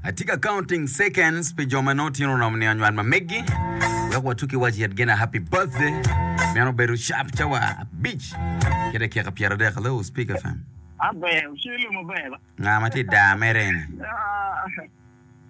Atye ka counting seconds pi jo ma nongo tyen oromo ni anywal ma meggi. Wek watuki wac yet gina happy birthday. Meno bedo sharp cawa abic ki dakika pyeradek. Hello, Speaker FM. Abe, ucele maber. Nga ma tye daa mere eni? Ah.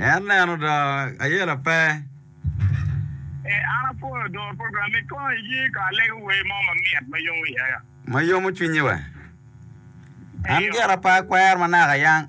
En neno do ayela pe. Ma yomo cwinyi we. An gira pe akwero ma naka yang.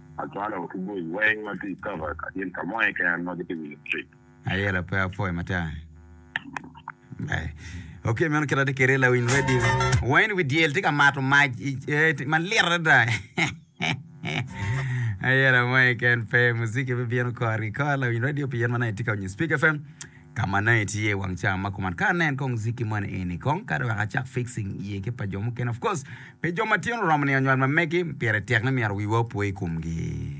Acwalo ki bul weng ma tye i cover ka gin ka mo keken ma gitye winyo mucik. Aye la pe apwoyo matar. Okay meno kit atye kede lawiny radio. Wayne wi dyel tye ka mato mac malit adada. Aye la mo keken pe muziki bibino kor ki kor lawiny radio pi yen ma nongo itye ka winyo Speak FM. Ka ma nongo itye i wang cawa ma kuman, kara nen kong ziki moni eni kong, kadi wek acak fixing iye ki pa jo mukene. Of course, pi jo matino oromo niang nywal ma megi, pire tek ni myero wiwa opo i komgi.